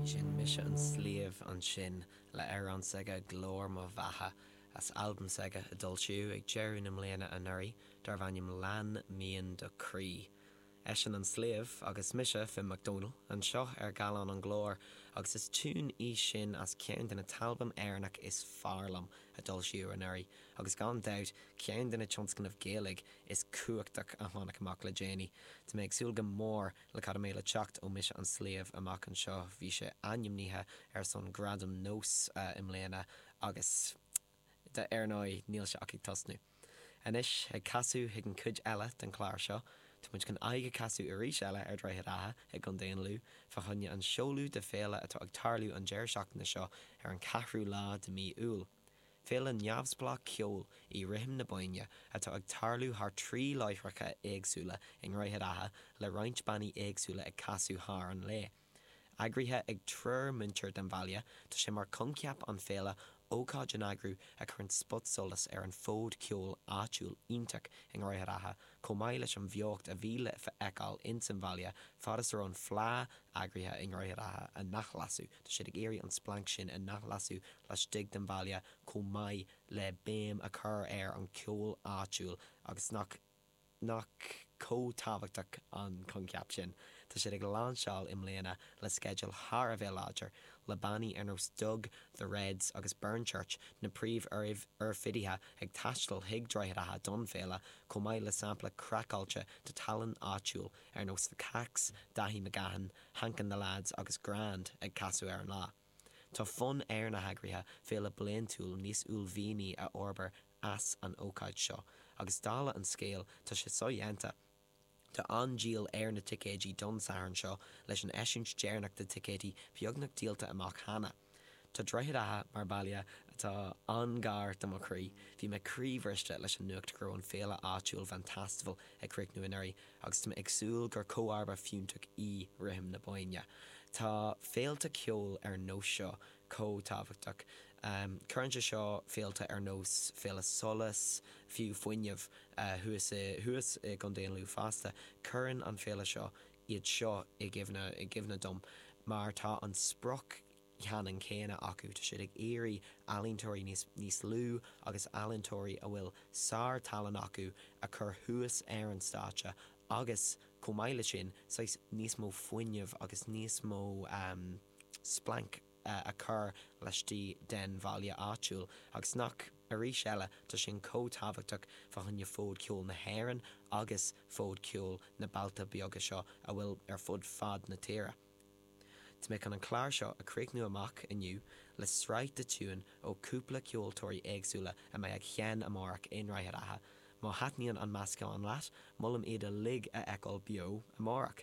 B'shin Mise an Sliabh ansin le amhrán s'aige 'Glór mo Bheatha' as albam s'aige a d'fhoilsíodh ag deireadh na mbliana anuraidh darbh ainm 'Lean Mian do Chroí'. Eisean an Sliabh agus mise Finn Mac Domhnaill anseo ar Gallán an Ghlóir agus is tiún í sin as ceann de na t-albam Éireannach is fearr liom a d'fhoilsíodh anuraidh agus gan dabht ceann de na tionscnaimh Ghaeilge is cumhachtach a tháinig amach le déanaí. Tá mé ag súil go mór Le cad a mbeidh le teacht ó Mise an Sliabh amach anseo? Bhí sé ainmnithe ar son Gradam NÓS i mbliana agus, ar ndóigh, níl sé ach ag tosnú. Anois, ag casadh chuig an chuid eile den chlár seo, tá muid chun aghaidh a chasadh arís eile ar Droichead Átha i gContae an Lú, fá choinne an seoladh de féile atá ag tarlú an deireadh seachtaine seo ar an ceathrú lá de mhí Iúil. Féile neamhspleách ceoil í Rithim na Bóinne atá ag tarlú thar trí láithreacha éagsúla i nDroichead Átha le roinnt bannaí éagsúla ag casadh thar an lae. Eagraithe ag triúr muintir den bhaile, tá sé mar coincheap an féile ócáid a n-eagrú a chuireann spotsolas ar an fód ceoil áitiúil iontach i nDroichead Átha chomh maith leis an bheocht a bhí le feiceáil insan bhaile fad is a raibh an Fleá eagraithe i nDroichead Átha a n-athlasú. Tá siad ag iarraidh an splanc sin a n-athlasú laistigh den bhaile chomh maith le béim a chur ar an cheol áitiúil agus nach nach chomh tábhachtach an coincheap sin. Tá siad ag lainseáil i mbliana le sceideal thar a bheith láidir, le bannaí ar nós Dug, The Reds agus Burnchurch, na príomh-oirfidithe, ag taisteal chuig Droichead Átha don bhféile, chomh maith le sampla craiceáilte de tallann áitiúil ar nós The Cacks, Daithí McGahan, Hank and the Lads agus Grand ag casadh ar an lá. Tá fonn ar na heagraithe féile bliaintiúil níos uaillmhianaí a fhorbair as an ócáid seo agus dála an scéil tá sé sodhéanta. Tá an-díol ar na ticéidí don Satharn seo leis an eisiúint deireanach de ticéidí beagnach díolta amach cheana. Tá Droichead Átha mar baile atá an-ghar do mo chroí. Bhí mé croíbhriste leis an nuacht go raibh an féile áitiúil Vantastival ag críochnú anuraidh agus tá mé ag súil gur comharba fiúntach í Rithim na Bóinne. Tá féilte ceoil ar nós seo chomh tábhachtach. Cuireann sé seo féilte ar nós Féile Solas, fiú Fuinneamh, thuas i gContae an Lú fosta. Cuireann an féile seo iad seo i gcuimhne dom mar tá an sprioc cheannann céanna acu, tá siad ag iarraidh ealaíontóirí níos lú agus ealaíontóirí a bhfuil sár-tallann acu a chur thuas ar an stáitse agus, chomh maith leis sin, saghas níos mó fuinneamh agus níos mó splanc. a chur laistigh den bhaile áitiúil, agus nach, arís eile, tá sin chomh tábhachtach fá choinne fód ceoil na hÉireann agus fód ceoil na mbailte beaga seo a bhfuil ar fud fad na tíre. Tá mé chun an clár seo a chríochnú amach inniu le sraith de tiúin ó chúpla ceoltóirí éagsúla a mbeidh ag seinm amárach i nDroichead Átha. Má thaitníonn an meascán leat, molaim iad uilig a fheiceáil beo amárach.